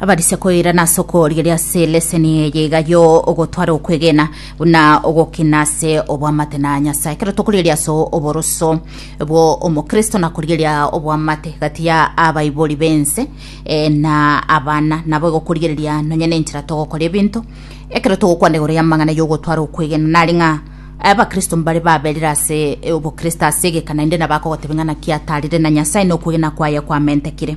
abarisia koirana ase okorigeria ase leseni eye iga yo ogotwara okwegena buna ogokina ase obwamate na nyasaye ekero tokorigeria ase oboroso bwo omokristo na korigeria obwamate gati ya abaibori bense eh, na abana nabo egokorigereria nonye na enchera togokora ebinto ekero togokwana igoro y'amang'ana y'ogotwara okwegena nari ng'a abakristo mbare baberire ase eh, obokristo ase egeka naende nabo akogotebia ng'a naki atarire na nyasaye na okwegena kwaye kwamentekire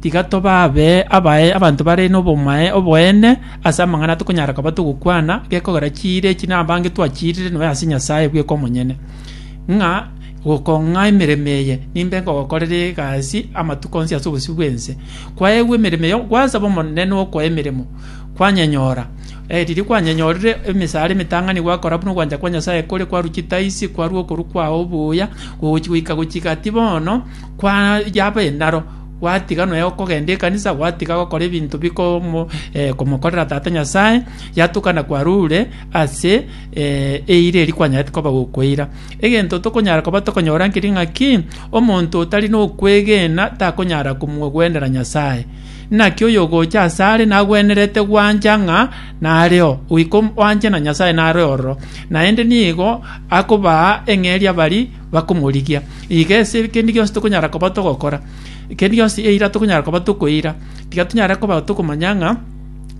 Tiga tobabe abae abanto bare nobomae oboene ase amang'ana tokonyara koba togokwana, gekogera chiire echi nabange twachiirire nonya ase Nyasae bweka omonyene, ng'a gokong'a emeremo eye, nimbe nkogokorera egasi amatuko onsi ase obosio bw'ense. Kwaegwa emeremo eye, gwasaba Omonene nokoa emeremo, kwanyenyora. Riria kwanyenyorire emesaara emetang'ani gwakora buna ogwancha kwa Nyasae kore, kwarwa chitaisi, kwarwa okorua kwao oboyia, gogochi goika gochika ati bono kwa yaba enaro. gwatiga nonya gokogenda ekanisa, gwatiga gokora ebinto bikomo eh, komokorera Tata Nyasae, yatuka na kwarure ase eh, eira eri kwanyarete koba gokoira. Egento tokonyara koba tokonyora nkeri ng'aki, omonto otari nokwegena takonyara komogwenera Nyasae. Naki oyo ogocha ase are nagwenerete gwancha ng'a nareo, goika wanche na Nyasae nare ororo, naende nigo akobaa eng'eria bari bakomorigia. Iga ase ekendi gionsi tokonyara koba togokora, ekendi gionsi eira tokonyara koba tokoira, tiga tonyare koba tokomanya ng'a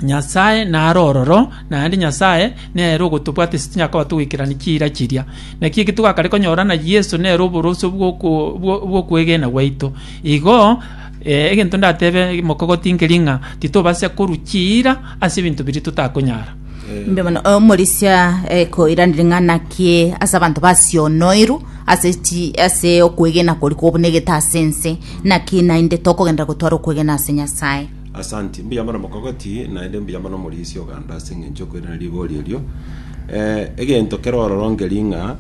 Nyasae nare ororo, naende Nyasae nere ogotobwate ase tinyara koba togoikerani chiira chiria. Naki eki togakare konyora na Yeso nere oboroso bw'oko bwo- bw'okwegena gwaito. Igo egento ndatebe mokogotinkerie ng'a titobasa korwa chiira ase ebinto biria totakonyara. Mbe mono omorisia eh, koiranire ng'a naki ase abanto basionoirwe ase chi ase okwegena kori kobunegete ase ense naki naende tokogendera gotwara okwegena ase nyasaye Asante, mbuya mono mokogoti, naende mbuya mono morisia oganda ase eng'encho okoirana rigori erio. Eh, egento kero ororongeri ng'a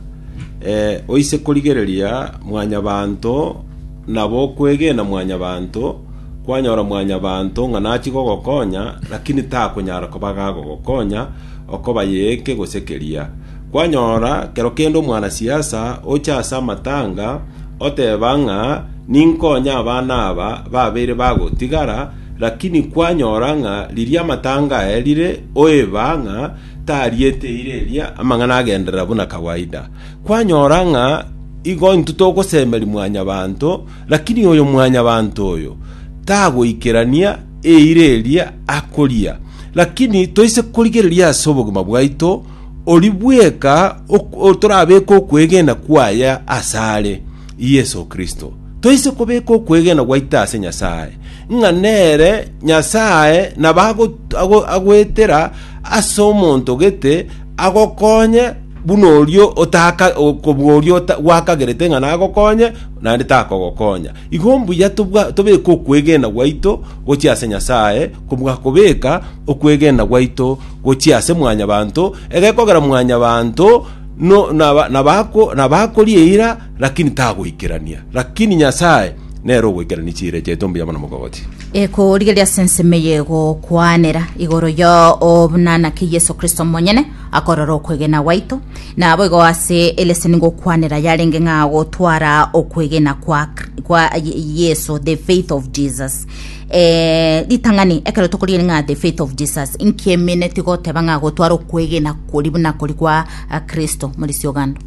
eh, oise korigereria mwanyabanto Nabo okwegena mwanyabanto kwanyora mwanyabanto ng'a nachie gogokonya, lakini takonyara koba gagogokonya okobaye eke gose keria. Kwanyora kero kende omwanasiasa ocha ase amatanga oteba ng'a ninkonye abana aba babeire bagotigara, lakini kwanyora ng'a riria amatanga aerire oeba ng'a tariete eira eria amang'ana agenderera buna kawaida. Kwanyora ng'a igo intwe togosemeria mwanyabanto, lakini oyo mwanyabanto oyo tagoikerania eira eria akoria. Lakini toise korigereria ase obogima bwaito, oria bweka ok- o- torabeke okwegena kwaye ase are, Yeso Kristo. Toise kobeka okwegena gwaito ase Nyasae, ng'a nere Nyasae nabo ago- ago- agoetera ase omonto gete agokonye buna oria otaka kobua oria ota- gwakagerete ng'a nagokonye naende takogokonya igo mbuya tobwa- tobeke okwegena gwaito gochia ase nyasaye kobua kobeka okwegena gwaito gochia ase mwanyabanto egekogera mwanyabanto no- naba- nabako- nabakoria eira Lakini tagoikerania. Lakini Nyasae nere ogoikerania chiira chiaito mbuya buna mogogoti. Ekorigereria ase ensemo eye egokwanera igoro yo buna naki Yeso Kristo omonyene akorora okwegena gwaito, naboigo ase eleseni ngokwanera yarenge ng'a gotwara okwegena kwa, kwa Yeso, the faith of Jesus. Eh, ritang'ani ekero tokorigereria ng'a the faith of Jesus, inki emine tigoteba ng'a gotwara okwegena kori buna kori kwa Kristo, Morisi Ogando?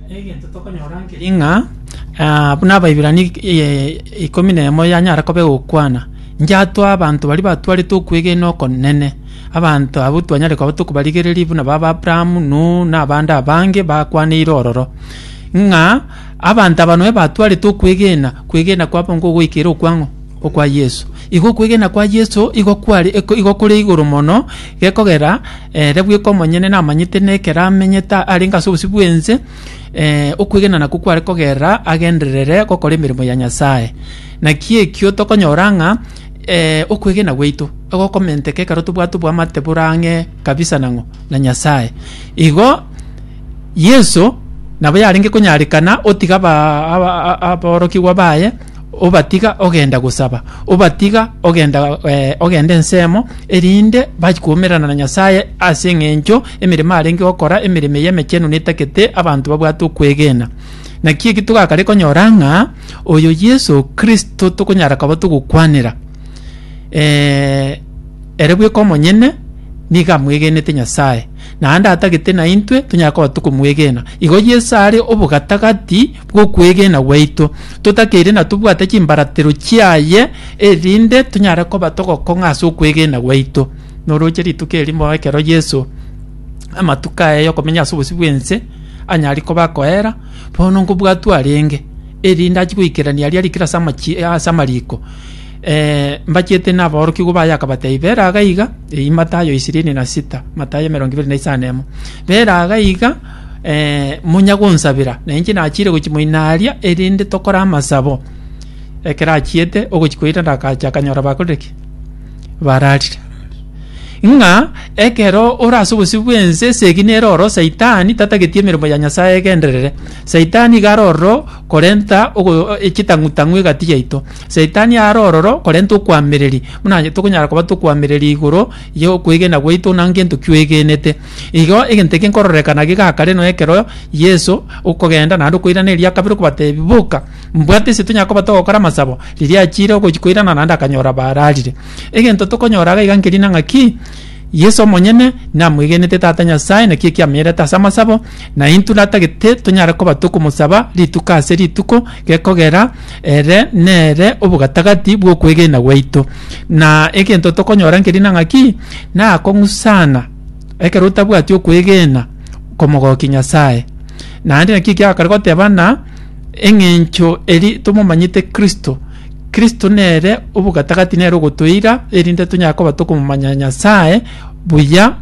Egento tokonyora nkeri ng'a ah, buna Abaibirania ik- eh, ikomi na emo yanyara koba egokwana, ngiatwa abanto baria batwarete okwegena okonene, abanto abwo twanyare koba tokobarigereria buna baba Abrahamu, Nuhu, na abande abange bakwaneire ororo, ng'a abanto aba noe batwarete okwegena, kwegena kwabo nkogoikera okwang'o? okwa Yeso. Igo okwegena kwa Yeso igo kware iko igo kore igoro mono, gekogera ere bweka omonyene namanyete na ekero amenyete arenge ase obosio bw'ense, eh, okwegena nakwo kware kogerera agenderere gokora emeremo ya Nyasae. Naki ekio tokonyora ng'a eh, okwegena gwaito egokomenteka ekero tobwate oboamate bore ang'e kabisa nang'o? na Nyasae. Igo Yeso nabo yarenge konyarekana otiga aba- aba- a- aborokigwa baye, obatiga ogenda gosaba, obatiga ogenda eh, ogenda ensemo, erinde bachi koumerana na Nyasaye ase eng'encho emeremo arenge gokora, emeremo eye emechenu netagete abanto babwate okwegena. Naki eki togakare konyora ng'a oyo Yeso Kristo tokonyara koba togokwanera eh, ere bweka omonyene nigo amwegenete Nyasaye. naende atagete naintwe tonyare koba tokomwegena. Igo Yeso are obogatagati bw'okwegena gwaito, totakeire na tobwate chimbaratero chiaye erinde tonyare koba togokong'a ase okwegena gwaito. Noroche rituko erimo ekero Yeso amatuko aye yokomenya ase obosio bw'ense anyare koba akoera, bono nkobwatwa arenge erinde achie goikerania aria arikire ase amachi ase amariko. Eh, mbachete naborokigwa baye akabatebia, bera aga iga, eyi Matayo ishirini na sita, Matayo emerongo ibere na isano na emo. Bera aga iga, eh, monya gonsabera, na inche nachire gochi moina aria, erinde tokore amasabo. Ekero achiete ogochi koira ndakacha akanyora bakorire ki? Bararire. Ng'a ekero ore ase obosio bw'ense esegi nere oro Saitani tatageti emeremo ya Nyasaye egenderere. Saitani iga aroro korenta ogo- e- chitang'u-tang'u egati yaito. Saitani are ororo, korenta okoamereria, buna onye tokonyara koba tokoamereria igoro y'okwegena gwaito na ngento kioegenete. Igo egento eke nkororekana gegaka reno ekero Yeso okogenda naende okoirana eria kabere okobatebia, Boka, mbwate ase tonyare koba togokora amasabo, riria achiire ogochia koirana naende akanyora bararire. Egento tokonyora iga nkerina ng'a ki? Yeso omonyene namwegenete Tata Nyasae, nakio ekiamenyerete ase amasabo, na intwe natagete tonyare koba tokomosaba rituko ase rituko, gekogera ere nere obogatagati bw'okwegena gwaito. Na egento tokonyora nkeri na ng'aki, nakong'usana ekero otabwati okwegena komogokia Nyasae. Naende nakio ekiagakare goteba ng'a eng'encho eri tomomanyete Kristo, Kristo nere obogatagati nere ogotoira, erinde tonyare koba tokomomanya Nyasae buya,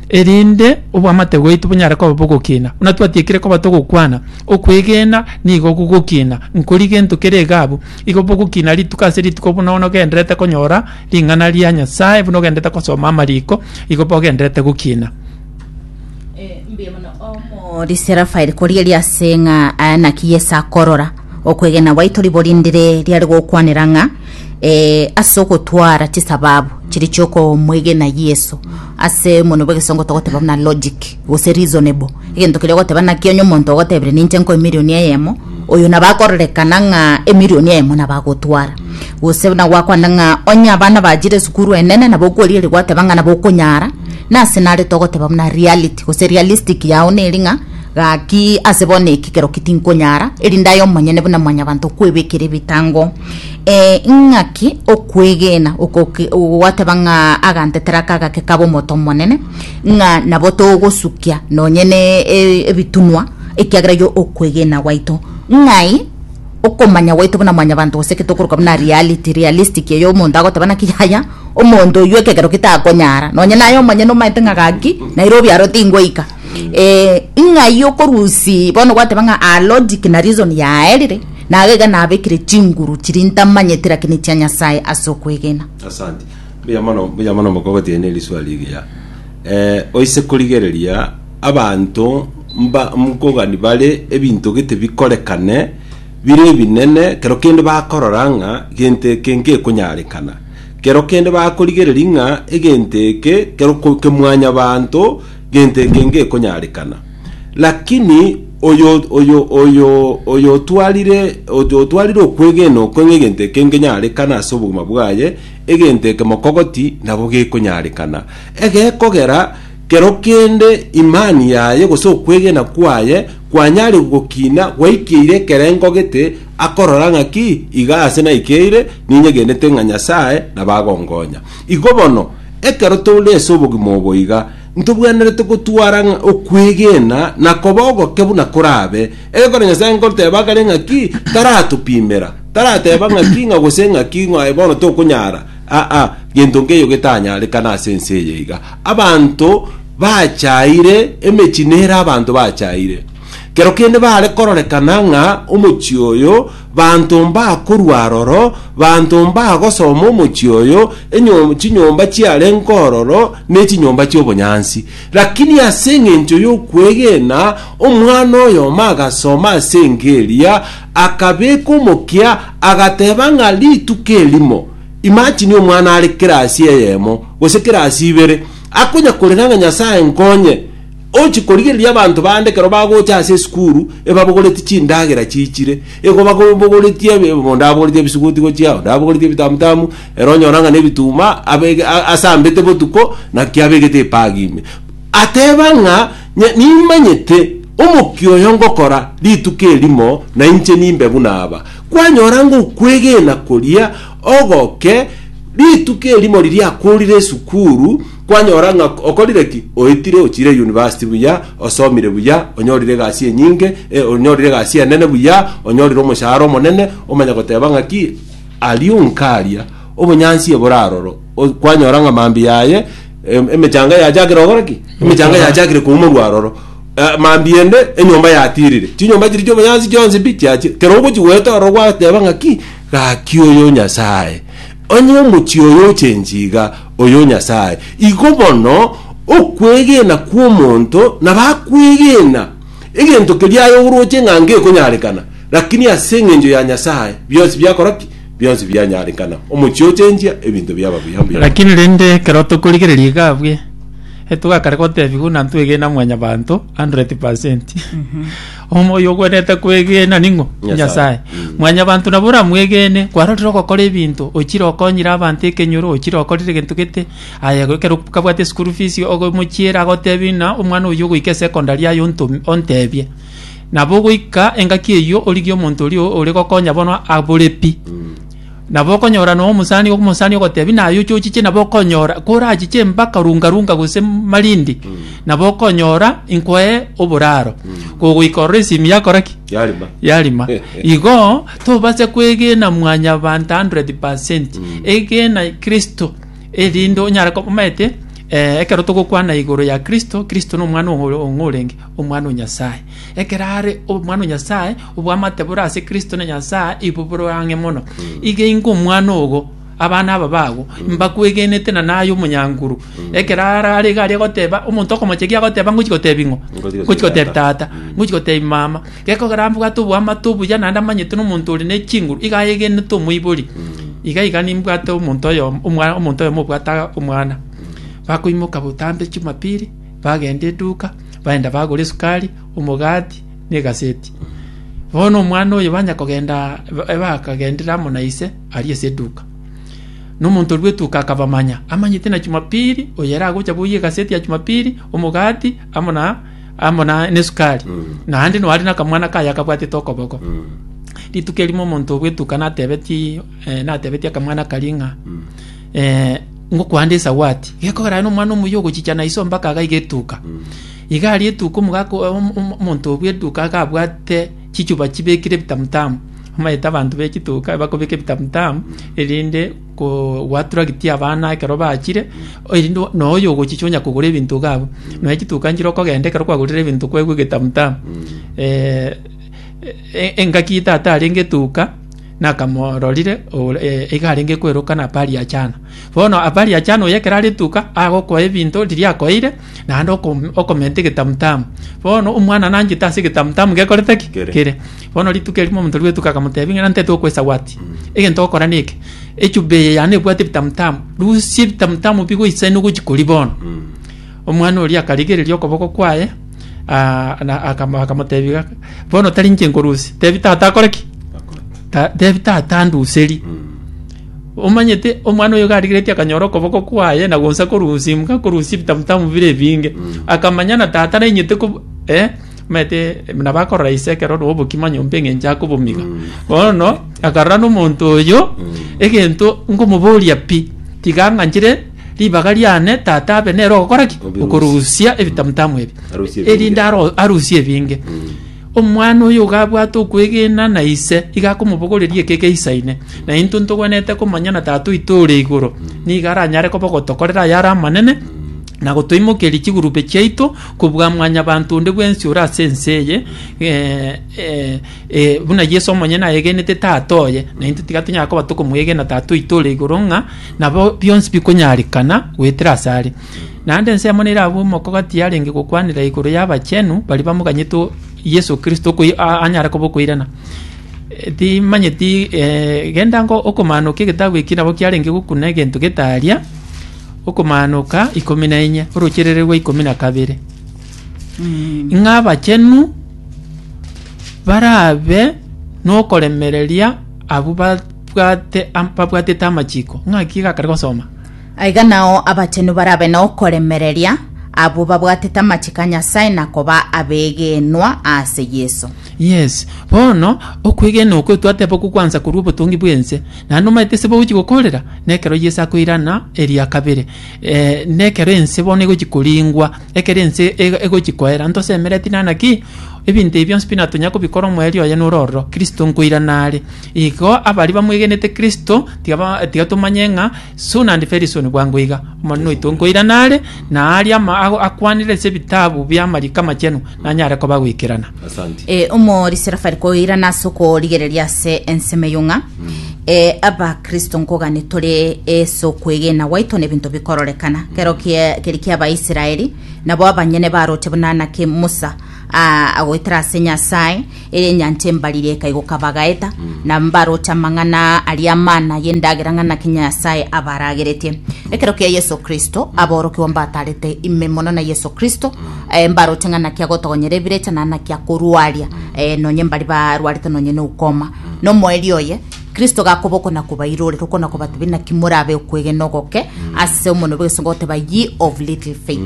erinde obwamate bwaito bonyare koba bogokina. Buna twatiekire koba togokwana, okwegena nigo gogokina, nkori gento kere egabu, igo bogokina rituko ase rituko buna onogenderete konyora ring'ana ria Nyasae, buna ogenderete gosoma amariko, igo bogenderete gokina. mbuya mono omori Serafaeli korigeria ase ng'a aya naki Yeso akorora okwegena gwaito riborindire riare gokwanera ng'a eh, ase ogotwara chisababu chiri chiokomwegena Yeso ase mono bwa egesongo togoteba buna logic gose reasonable egento keria ogoteba naki onye omonto ogotebire ninche nkoe emilion eyemo oyo nabo akororekana ng'a emilion eyemo nabo agotwara gose buna gwakwanire ng'a onye abana bachire esukuru enene nabo okorigeria gwateba ng'a nabo okonyara Nase nare togoteba buna reality gose realistic yao neri ng'a gaki ase bono eki kero ki tinkonyara erinde aye omonyene buna mwanyabanto okwebekera ebitango eh, ng'aki okwegena okoki- gwateba ng'a agantetera aka gake kabe omoto omonene ng'a nabo togosukia nonye ne e- ebitunwa ekiagera yo okwegena gwaito ng'ai Okomanya gwaito buna mwanyabanto gose eke tokoroka buna reality, realistic, eyo omonto agoteba naki yaya, omonto oyio ekegero ki takonyara, nonye naye omonyene omanyete ng'a gaki, naira obiaro tingoika. Eh, ng'ai okorusia bono gwateba ng'a aa logic na reason yaerire, naga iga nabekire chinguru chiria ntamanyeti lakini chia Nyasaye ase okwegena. Asante. Mbuya mono, mbuya mono moko gotiga ne riswali rigiya. Ee, oise korigereria abanto mba- mkogani bare ebinto gete bikorekane bire ebinene, kero kende bakorora ng'a gento eke ngekonyarekana. Kero kende bakorigereria ng'a egento eke kero ko- ke mwanyabanto, gento eke ngekonyarekana. Lakini oyo oyo oyo oyo otwarire oyo otwarire okwegena okwe ng'a egento eke ngenyarekana ase obogima bwaye, Egento eke mokogoti nabo gekonyarekana, egekogera kero kende imani yaye gose okwegena kwaye kwanyare gokina gwaikeire ekerengo gete, akorora ng'aki, Iga aase naikeire, ninyegenete ng'a Nyasae nabo agonkonya. Igo bono, ekero tore ase obogima obo iga, Ntobwenerete gotwara ng'a okwegena na koba ogoke buna korabe. Ekero Nyasae nkoteba kare ng'aki, taratopimera, tarateba ng'aki ng'a gose ng'aki ng'a bono tokonyara, aa, gento nkeiyo getanyarekana ase ense eye iga. Abanto bachaire, emechie nere abanto bachaire. Kero kende bare kororekana ng'a omochie oyo Banto mbakorwa aroro, banto mbagosoma omochie oyo, enyom, chinyomba chiarenge ororo, ne chinyomba chi'obonyansi. Lakini ase engencho y'okwegena, omwana oyomo agasoma ase enka eria, akabeka omokia, agateba ng'a rituko erimo, imagine omwana are kirasi eyemo, gose kirasi ibere, akonyakorera ng'a Nyasae nkonye, Ochi korigereria abanto bande ekero bagocha ase esukuru ebabogoreti chindagera chiichire, igo bakobogoretie ebi- ebi- onde abogoretie ebisuguti gochia, onde abogoretie ebitamutamu, ere onyora ng'a nebituma abege- a- asambete botuko, naki abegete epagi ime. Ateba ng'a nye- nimanyete omokia oyo ngokora rituko erimo na inche nimbe buna aba. Kwanyora ng'a okwegena koria ogoke rituko erimo riria akorire esukuru, Kwanyora ng'a okorire ki? Oetire, ochiire yunivasiti buya, osomire buya, onyorire egasi enyinge, e, onyorire egasi enene buya, onyorire omoshahara omonene, omanya goteba ng'aki? Ario nkaria, obonyansi ebore aroro. O- Kwanyora ng'a mambia aye, em- emechanga yachakire gokora ki? Emechanga Gokora. yachakire koumorwa aroro. Eh, Mambia ende, enyomba yatirire. Chinyomba chiria chi'obonyansi chionsi pi? Chiachire. Kero ogochi goeta ororo gwateba ng'aki? Gaki oyo Nyasae. Onye omochie oyo ochenchi iga, oyo Nyasae. Igo bono okwegena kw'omonto nabakwegena egento keria aye oroche ng'a ngekonyarekana, lakini ase engencho ya Nyasae bionsi biakora ki? Bionsi bianyarekana. Omochie ochenchia, ebinto biaba buya mbuya. Lakini rende ekero tokorigereria iga abuya, etogakare gotebiwa buna ntwegena mwanyabanto 100%. Omoyo ogwenerete kwegena ning'o? Nyasae. Nyasae. Mwanyabanto nabo oramwegene, kwarorire ogokora ebinto, ochire okonyire abanto ekenyoro, ochire okorire egento gete, aye ekero kabwate school fees ogomochiera agotebie ng'a omwana oyio ogoika esecondary aye ontome ontebie. Nabo ogoika engaki eyio origie omonto oria ore gokonya bono abore pi. Nabo okonyora nonya omosani omosani ogotebia naye ochochiche nabo okonyora korachiche mpaka runga runga gose malindi nabo okonyora inkoe oboraro kogoika ororo esimi yakora ki Yarima. yarima igo tobase kwegena mwanyabanto 100 percent egena kristo erinde onyare ko- omanyete eh, ekero togokwana igoro ya kristo kristo nomwana ong'o- ong'orenge omwana o nyasaye Ekero are Omwana o Nyasae, oboamate bore ase Kristo na Nyasae ibo bore ang'e mono. Iga ingo omwana ogo, abana aba bago, mbakwegenete na naye omonyanguru. Ekero arare iga aria goteba, omonto okomochegia agoteba ngochi gotebi ng'o? Ngochi gotebi Ngochi gotebi tata. tata, ngochi gotebi mama. Gekogera mbwate oboamate obuya naende amanyete na omonto ore ne chinguru, iga ayegenete omoibori. Iga iga nimbwate omonto oyomo, omwa- omonto oyomo obwate omwana. Bakoimoka botambe Jumapili, bagenda eduka baenda bagora esukari omogati na egaseti bono omwana oyo banya kogenda bakagendire amo na ise aria ase eduka na omonto rwa etuka akabamanya amanyete na chumapili oyo ere agocha boyia egaseti ya chumapili omogati amo na amo na na esukari naende nore na akamwana kaye akabwatete okoboko rituko erimo omonto bw'etuka natebetie eh, natebetie akamwana karia ng'a eh, ngokwanda esawati gekogera no mwana omuyo ogochicha na iso mpaka agaiga etuka iga ari etuka omogaka omonto obwe etuka agabwate chichuba chibekire bitamutamu amaeta abantu be chituka bakobeka bitamutamu erinde gwatura giti abana ekero bachire erinde no oyo ogochicha onya kogora ebintu gabo no echituka nchire okogenda ekero kwagorire ebintu kwegwe getamutamu eh, eh, engaki tata arenge etuka nakamororire ore eh, iga arenge kweroka na Apariachana. Bono Apariachana oyo ekero arituka agokoa ebinto riria akoeire, naende okom- okomenta egetamutamu. Bono omwana nanchete ase egetamutamu gekorete ki? Kere. kere. Bono rituko erimo omonto rwetuka akamotebia ng'a nantete okwesa gwati. Egento ogokora neke. Echube eye yane ebwate ebitamutamu. Rusia ebitamutamu bigoisaine ogochia koria bono. Mm. Omwana oria akarigereria okoboko kwaye, ah, na akamo- akamotebia iga, bono tari inche nkorusia tebi tata akore ki Ta- tebi tata anduseri omanyete omwana oyo garigeretie akanyora okoboko kwaye na gonsa korusimka korusia ebitamutamu bire ebinge akamanya na tata nainyete kob- eh, omanyete nabo akorora ise ekero oroo obokima nyomba eng'encho akobomiga bono akarora na omonto oyo egento nkomoboria pi tiga ang'anchire. Ribaga riane tata abe nere ogokora ki? Obirusia. Okorusia ebitamutamu ebi. Arusie ebinge. Erinde aro- arusie ebinge. Omwana oyo gabwate okwegena na ise, iga akomobogoreria ekeke ise ine. Na intwe ntogwenerete komanya na Tata oito ore igoro, nigo aranyare koba ogotokorera ayare amanene, na gotoimokeria chigurube chiaito kobua mwanyabanto onde bwensi ore ase ense eye, eh, eh, Ee, buna Yesu omonyene ayegenete Tata oye, naintwe tiga tonyara koba tokomwegena Tata oito ore igoro ng'a nabo bionsi bikonyarekana goetera ase are. Naende ensemo nerabue omoko gati yarenge gokwanera igoro y'abachenu baria bamoganyete o- Yesu Kristo okoi- a- anyare koba okoirana. E, Timanyeti eh, genda ngo okomanokia egetabu eki nabo kiarenge gokuna egento getaria okomanoka ikomi na enye, orocherere rwa ikomi na kabere. Ng'a abachenu barabe nokoremereria abwo babwate am- babwatete amachiko. Ng'aki iga akare gosoma? Aiga nao abachenu barabe nokoremereria abwo babwatete amachiko a Nyasae na koba abegenwa ase Yeso. Yes, bono okwegena okwo twateba okwo gwansa korwa obotongi bw'ense, naende omanyete ase bogochi gokorera, nekero Yeso akoirana eria kabere. Eh, nekero ense bono egochi koringwa. Ekero ense egochia koera, ntosemereti nana ki? Ebinto ebi bionsi pi natonya kobikora omoerio oye nore ororo, Kristo nkoirana are. Igo abaria bamwegenete Kristo tiga ba tiga tomanye ng'a soon and very soon bwango iga, Omonene oito nkoirana are, na aaria ama akwanire ase ebitabu bi'amariko amachenu, nanyare koba goikerana. Asante. Eh, omori serafari koirana ase okorigereria ase ensemo eyo ng'a eh, abakristo nkogani tore ase okwegena gwaito na ebinto bikororekana kero kie- keri kia abaisraeli nabo abanyene baroche buna naki musa ah, agoetera ase nyasae ere enyancha embariri ekaigoka bagaeta na mbaroche amang'ana aria amana y'endagera ng'a naki nyasae abarageretie ekero kia yeso kristo aborokigwa mbatarete ime mono na yeso kristo eh, mbaroche ng'a naki agotogonyera ebirecha na naki akorwaria eh, nonye mbari barwarete nonye na ukoma nomoerio oye kristo gakoboko na kobairore rokona kobatebia naki morabe okwegena ogoke ase omonwe bw'egesongo goteba ye of little faith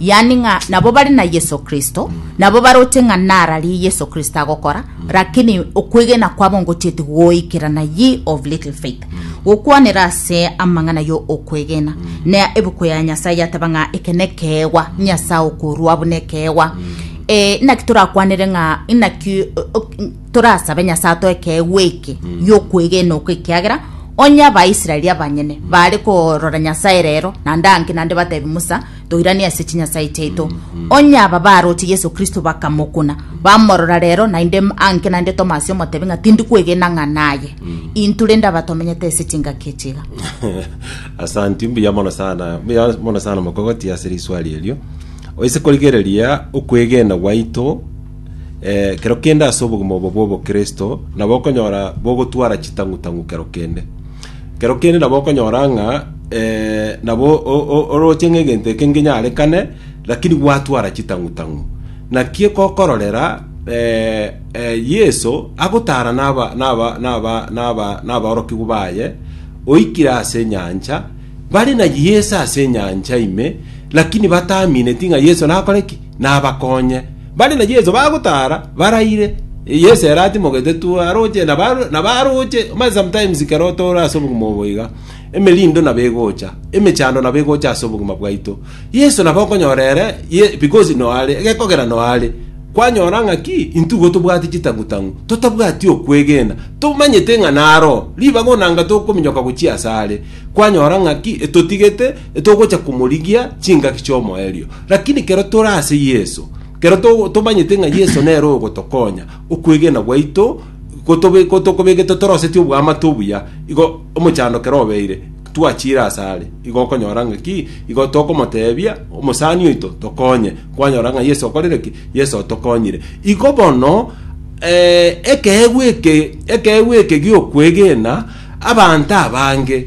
yani ng'a nabo bari na yeso kristo nabo baroche ng'a nararie yeso kristo agokora lakini okwegena kwabo ngochieti goikerana ye of little faith gokwanera ase amang'ana yo okwegena na ebuku ya nyasae yateba ng'a eke nekeegwa nyasae okorua buna ekeegwa Eh, inaki torakwanere ng'a inaki o- o- torasabe nyasae atoe ekeegwa eke yokwegena oko ekiagera onye abaisraeli abanyene bare korora nyasae rero nande anki nande batebi musa toiranie ase chinyasae chiaito onye aba baroche yeso kristo bakamokuna bamorora rero naende m- anke naende tomasi omotebi ng'a tindi kwegena ng'a naye intu rende aba tomenyete ase chingaki echiga asanti mbuya mono sana mbuya mono sana mokogoti ase riswali erio oise korigereria okwegena gwaito eh, kero kende ase obogima obo bw'obokristo nabo okonyora bogotwara chitang'u-tang'u kero kende Kero kende nabo okonyora ng'a nabo orooche ng'egento eke ngenyarekane, lakini gwatwara chitang'u-tang'u. Naki gokororera Yeso agotaara n'aborokigwa baye, oikire ase enyancha, bare na Yeso ase enyancha ime, lakini bataamineti ng'a Yeso nakore ki? nabakonye. Bare na Yeso bagotaara baraire, Yeso ere atimogete tu, aroche, na ba- na baroche, omanye sometimes ekero tore ase obogima obo iga, emerindo nabo egocha, emechando nabo egocha ase obogima bwaito. Yeso nabo okonyora ere, ye- because no are, gekogera no are, kwanyora ng'a ki, intwe igo tobwati chitang'u-tang'u, totabwati okwegena, tomanyete ng'a naro, ribaga onanga tokominyoka gochia asare, kwanyora ng'a ki, etotigete, togocha komorigia chingaki chi'omoerio. Lakini kero tore ase Yeso, kero to- tomanyete ng'a Yeso nere ogotokonya, okwegena gwaito gotobe- gotokobegete torosetie obwamate obuya, igo omochando kera obeire, twachiire ase are, igo okonyora ng'a ki, igo tokomoteebia, omosani oito tokonye, kwanyora ng'a Yeso okorire ki, Yeso otokonyire. Igo bono eh, ekeegwa eke, ekeegwa eke gi'okwegena, Abanto abange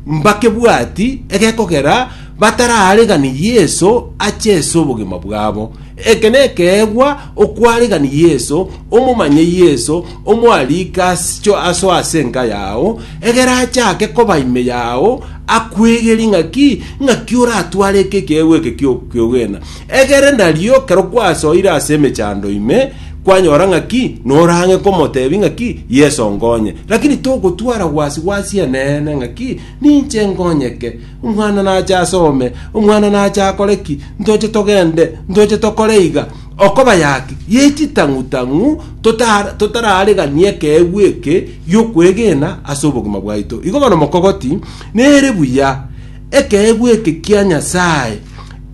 mbakebwati egekogera batararegani Yeso ache ase obogima bwabo. Eke nekeegwa okwaregani Yeso, omomanye Yeso, omwarike aso ase enka yao, egere achake koba ime yao, akwegeri ng'aki ng'aki oratware eke ekeegwa eke ki'okwegena. Egere nario kero kwasoire ase emechando ime, kwanyora ng'aki, norang'e komotebi ng'aki, Yeso nkonye. Lakini togotwara gwasi-gwasi Eneene ng'aki, Ninche nkonyeke, omwana nache asome, omwana nache akore ki, ntoche togende, ntoche tokore iga. Okobayaki, ye chitang'u-tang'u totara totararegani ekeegwa eke gi'okwegena ase obogima bwaito. Igo bono mokogoti, nere buya, ekeegwa eke kia Nyasae.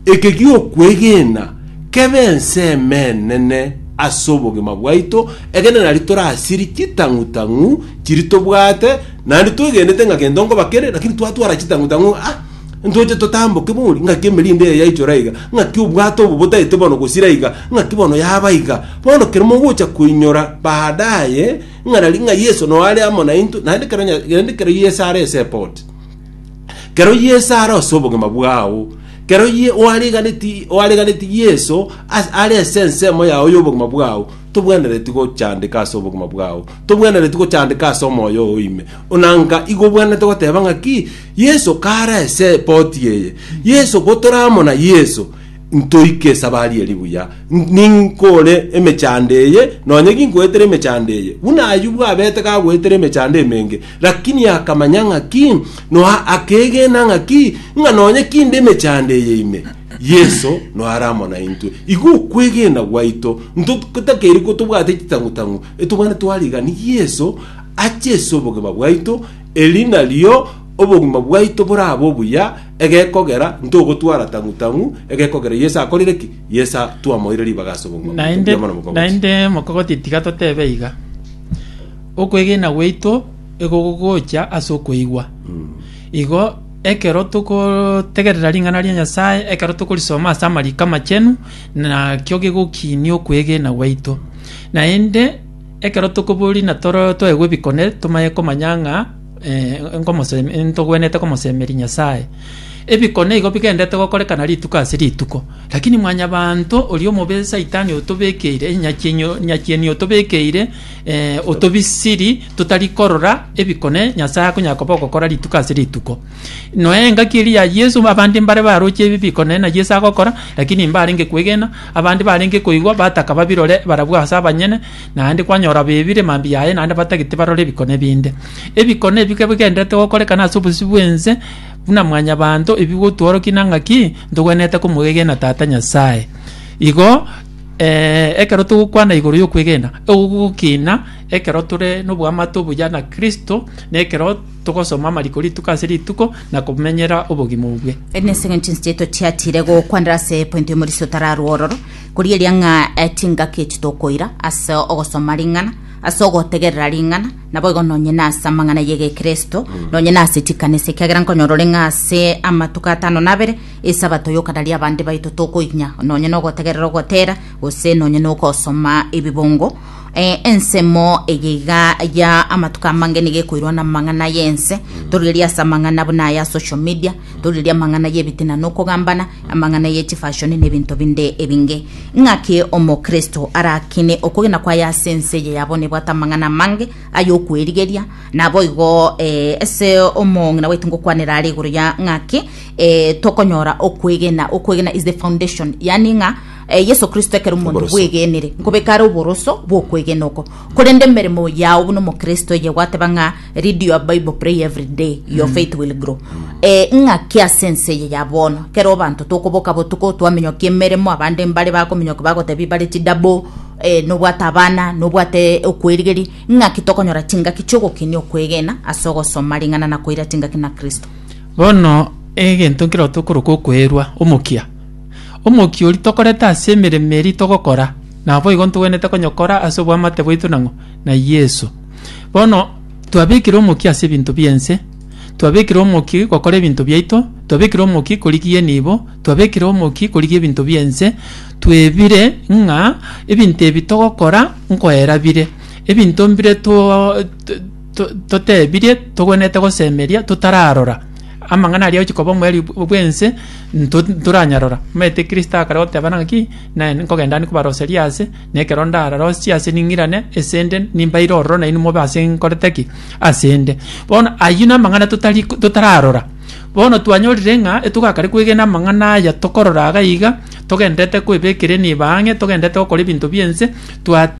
Eke gi'okwegena kebe ense emenene ase obogima bwaito, ekeene nari torasiri chitang'u-tang'u chiria tobwate, naende twegenete ng'a gento nkoba kere, lakini twatwara chitang'u-tang'u ng'a ah, ntoche totamboke bori, ng'aki emerinde eye yaichora iga, ng'aki obwato obo botaete bono gosira iga, ng'aki bono yaba iga. Bono kero mogocha koinyora baadaye ng'a nari ng'a Yeso noyo are amo naintwe, naende kero, naende kero Yeso are ase eboti, Kero Yeso are ase obogima bwao, kero ye oariganeti oariganeti Yeso as- are ase ensemo yao y'obogima bwao, tobwenereti gochandeka ase obogima bwao, tobwenereti gochandeka ase omoyo oo ime. Ona nka igo obwenerete goteba ng'aki, Yeso kare ase eboti eye, Yeso gotora amo na Yeso, ntoike esabari eri buya, n- ninkore emechando eye, nonye ginkoetera emechando eye, buna Ayubu abete gagoetera emechando emenge, Lakini akamanya ng'aki, noa akeegena ng'aki, ng'a nonye kinde emechando eye ime, Yeso noa are amo naintwe. Igo okwegena gwaito ntotakeiri kotobwate chitang'u-tang'u, etobane twarigani Yeso ache ase obogima bwaito, eri nario obogima bwaito borabe obuya, egekogera ntogotwara tang'u-tang'u, egekogera Yeso akorire ki? Yeso twamoeire ribaga ase obogima bwaito. Naende, Mbuya mono mogocha. naende mokogoti tiga totebe iga. Okwegena gwaito ego gogocha ase okoigwa. Igo ekero tokotegerera ring'ana ria Nyasae, ekero tokorisoma ase amariko amachenu, nakio gegokinia okwegena gwaito. Naende ekero tokoboria na toro toegwe ebikone, tomanye komanya ng'a nkomosemi- ntogwenerete komosemeria Nyasae. Ebikone igo bigendete gokorekana rituko ase rituko, rakini mwanyabanto oria omobe saitani otobekeire, nyachienyi- nyachieni otobekeire, eh, otobisiri totari korora ebikone nyasaye akonya koba ogokora rituko ase rituko noe engaki eri ya yesu abande mbare baroche ebi bikone na yesu agokora lakini mbarenge kwegena abande barenge koigwa bataka babirore barabwo ase abanyene naende kwanyora bebire mambi yaye naende batagete barore ebikone binde ebikone ebi ke bigendete gokorekana ase obosio bwense buna mwanyabanto ebi gotworoki nang'aki ntogwenerete komwegena tata nyasaye igo ekero togokwana igoro yokwegena, ogogokina ekero tore noboamate obuya na Kristo, na ekero togosoma amariko rituko ase rituko na komenyera obogima obwe. Eri nense ng'a chinse chiaito chiatiire gokwanera ase epointi y'omorisia otararwa ororo, korigereria ng'a chingaki echi tokoira ase ogosoma ring'ana, ase ogotegerera ring'ana, naboigo nonye nase amang'ana y'Egekristo, nonye nase chikanisa, ekiagera nkonyora ore ng'a ase amatuko atano na abere Esabato y'okarari abande baito tokoinyia nonye nogotegerera ogotera, gose nonye nogosoma ebibongo. Eh, ensemo eye iga ya amatuko amange niga ekoirwa namang'ana y'ense, torigerie ase amang'ana buna aya social media, torigerie amang'ana y'ebitina nokogambana, amang'ana y'echifashoni na ebinto binde ebinge. Ng'aki omokristo arakine okogena kwaye ase ense eye yabo nebwate amang'ana amange ayokwerigeria, naboigo eh, ase omong'ina baitu ngokwanera are igoro ya ng'aki eh, tokonyora okwegena okwegena is the foundation yani ng'a eh, yesu kristo ekero omonto Oboroso. bwegenire nkobekare oboroso bwokwegena oko korende emeremo yao buna omokristo eye gwateba ng'a read your bible pray every day your faith will grow eh, ng'aki ase ense eye ya bono kero abanto tokoboka botuko twamenyoki emeremo abande mbare bakomenyoki bagotebi bare chidabo eh, nobwate abana nobwate okwerigeri ng'aki tokonyora chingaki chiogokini okwegena ase ogosoma ring'ana na koira chingaki na kristo Bono egento nkero tokoroka okwerwa omokia. Omokia oria tokorete ase emeremo eria togokora, naboigo ntogwenerete konya gokora ase oboamate bwaito nang'o? Na Yeso. Bono twabekire omokia ase ebinto bi'ense, twabekire omokia gokora ebinto biaito, twabekire omokia korigia enibo, twabekire omokia korigia ebinto bi'ense, twebire ng'a ebinto ebi togokora nkoera bire, ebinto mbire to-to. to- totebirie togwenerete gosemeria totararora amang'ana aria agochia koba omoerio bw- bw'ense nto- ntoranyarora. Omanyete Kristo akare goteba ng'a ng'aki, naye nkogenda ande kobaroseria ase, na ekero ndararosie ase ning'irane ase ende nimbaire ororo nainwe mobe ase nkorete ki? ase nde. Bono ayio namang'ana totari totararora, bono twanyorire ng'a etogakare kwegena amang'ana aya tokorora iga iga, togendererete koebekera enibo ang'e, togendererete gokora ebinto bi'ense, twa.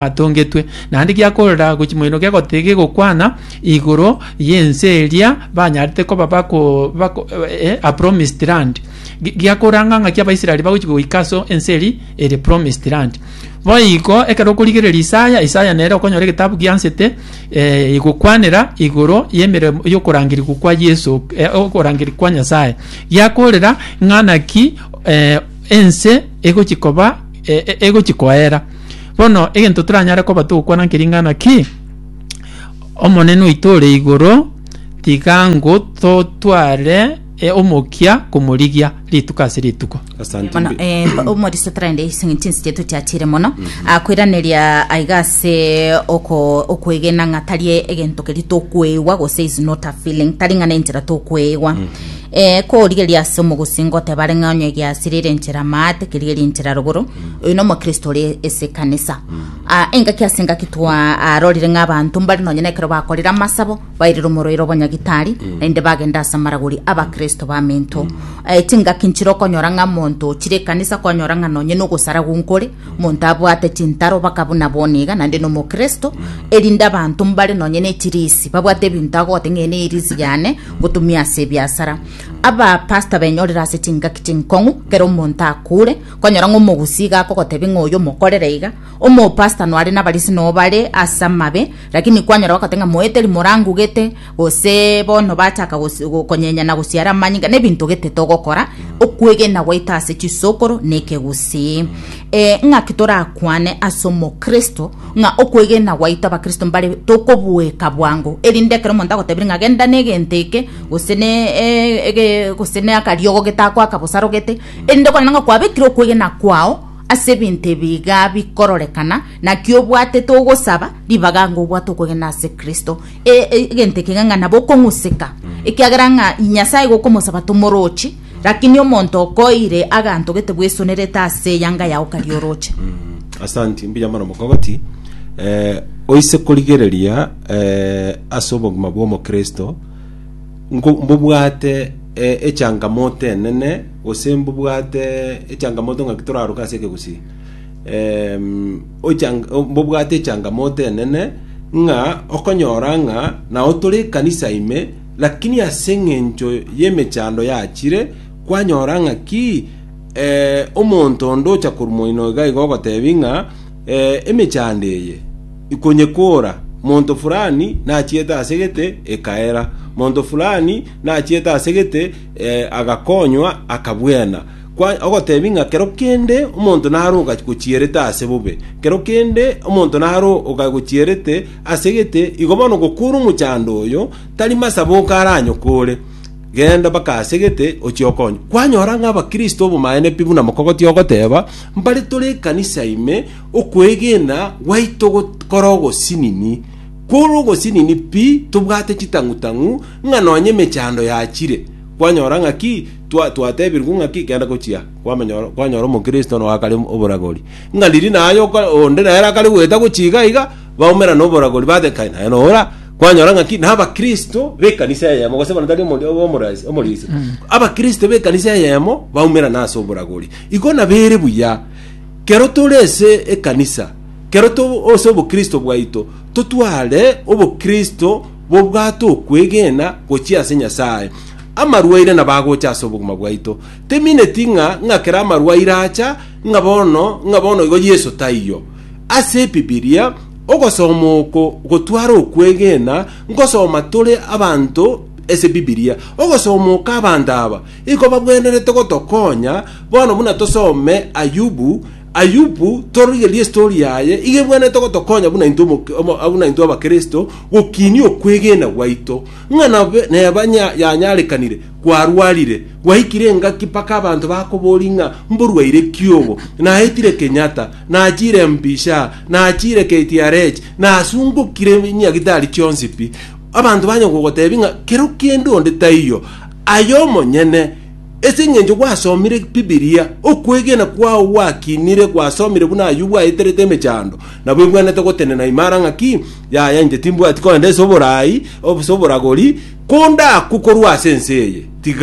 atongetwe, naende giakorera gochi moino gegotiga gegokwana igoro y'ense eria banyarete koba bako, bako eh, a promised land Gi- giakoranga ng'aki abaisraeli bagochi goika aso ense eri ere promised land boiko ekero okorigereria isaya isaya nere okonyora egetabu giansete eh, igokwanera igoro y'emeremo y'okorangerigwa kwa yeso eh, okorangerigwa kwa nyasaye giakorera ng'a naki eh, ense egochi koba e- e- egochi koera Bono egento toranyare koba togokwana nki ring'ana ki, Omonene oito ore igoro tiga ngo totware e, omokia komorigia rituko ase rituko. Asante. mono mbi- eh, mba- omorisa tarende ising'ini chinsi chiaito chiachire mono akoiraneria aiga ase oko- okwegena ng'a tari egento keri tokweigwa gose is not a feeling tari ng'a nenchera tokweigwa Eh, korigeria ase omogosi ngoteba are ng'a onye giasirire enchera maate kerigeria enchera rogoro oyo nomokristo ore ase ekanisa Ah, engaki ase engaki twarorire ng'a abanto mbare nonye na ekero bakorire amasabo bairire omoroiro obonyagitari naende bagenda ase amaragori abakristo bamento Eh, chingaki nchire okonyora ng'a monto ochire ekanisa kwanyora ng'a nonye na ogosara gonkore monto abwate chintaro baka buna bono iga naende nomokristo erinde abanto mbare nonye na echirisi babwate ebinto agote ng'a eye ne erisi yane ngotumia ase ebiasara abapasta benyorire ase chingaki chinkong'u ekero omonto akure Konyora ng'a omogusii iga akogotebi ng'a oyo omokorere iga, omopastor noare nabarisi nobo bare ase amabe, rakini kwanyora bagote ng'a moeteri morangugete, gose bono bachaka gos- go- konyenya na gosiara amanyinga, nebinto ogetete ogokora, okwegena gwaito ase chisokoro na ekegusii. Eh, ng'aki torakwane ase omokristo, ng'a okwegena gwaito abakristo mbare tokobueka bwango, erinde ekero omonto agotebirie ng'a genda na egento eke, gose ne eh, ege gose na akariogo gete akoaka bosarogete, Erinde okore ng'a kwabekire okwegena kwao ase ebinto ebi iga bikororekana, naki obwatete ogosaba, ribaga ng'a obwate okwegena ase Kristo, e- e- egento ekega ng'a nabo okong'useka, ekiagera ng'a Nyasaye igo okomosaba tomoroche, rakini omonto okoeire aganto gete bwesonerete ase eyanga yao karia oroche. Asanti, mbuya mono mokogoti. Eh, oise korigereria eh, ase obogima bw'omokristo nko- mbobwate eh, echangamoto enene gose mbobwate echangamoto ng'aki toraroke ase ekegusii Em, ochang- o- mbobwate echangamoto enene ng'a okonyora ng'a nao tore ekanisa ime lakini ase eng'encho y'emechando yachire kwanyora ng'aki eh, omonto onde ocha korwa moino iga iga ogotebi ng'a Ee, emechando eye ikonyekoora, Monto fulani nachiete ase egete, ekaera, Monto fulani nachiete ase egete, eh, agakonywa, akabuena. Kwa, ogotebi ng'a kero kende omonto naro ogagochierete ase bobe, kero kende omonto naro ogagochierete ase egete, igo bono ogokoora omochando oyo, tari masaboka aranyokoore. Genda mpaka ase gete, ochie okonywe. Kwanyora ng'a abakristo obomaene pi buna mokogoti ogoteba, mbare tore ekanisa ime, okwegena gwaito gokore ogosinini. Kore ogosinini pi, tobwate chitang'u-tang'u ng'a nonya emechando yachire. Kwanyora ng'a ki? Twa, twatebirwe ng'a ki? Genda gochia. Kwamenya, kwanyora omokristo noakare oboragori. Ng'a riria naye oka, onde nere akare goeta gochia iga iga, baumera noboragori batekaine aye noora kwanyora ng'aki nabakristo b'ekanisa eyemo gose bono tari omori- omorasi- omorisi abakristo b'ekanisa eyemo baumera nase oboragori igo nabere buya kero tore ase ekanisa kero to ase obokristo bwaito totware obokristo bobwate okwegena gochia ase nyasae amarwaire nabo agocha ase obogima bwaito temineti ng'a ng'a kera amarwaire acha ng'a bono ng'a bono igo yeso taiyo Ase Ebibilia, ogosoma oko gotware okwegena, Nkosoma tore abanto ase Bibilia. Ogosoma oko abanto aba igo bagwenerete gotokonya, bono buna tosome Ayubu, Ayubu torigerie estori yaye igo ebwenerete gotokonya buna intwe omoke- omo- buna intwe abakristo gokinia okwegena gwaito. Ng'a nabe- neba nya- yanyarekanire, kwarwarire, gwaikire engaki mpaka abanto bakobori ng'a mborwaire kiogo, naetire Kenyatta, Nachiire empisha, nachiire KTRH, nasungokire nyagitari chionsi pi. Abanto banya gogoteebia ng'a kero kende onde taiyo, aye omonyene, ase engencho gwasomire Bibilia, okwegena kwao gwakinire, gwasomire buna ayio bwaeterete emechando, nabo ebwenerete gotenena imara ng'a ki? Yaya, inche timbwati kogenda ase oboraai, ase oboragori, konda aku korwa ase ense eye. Tiga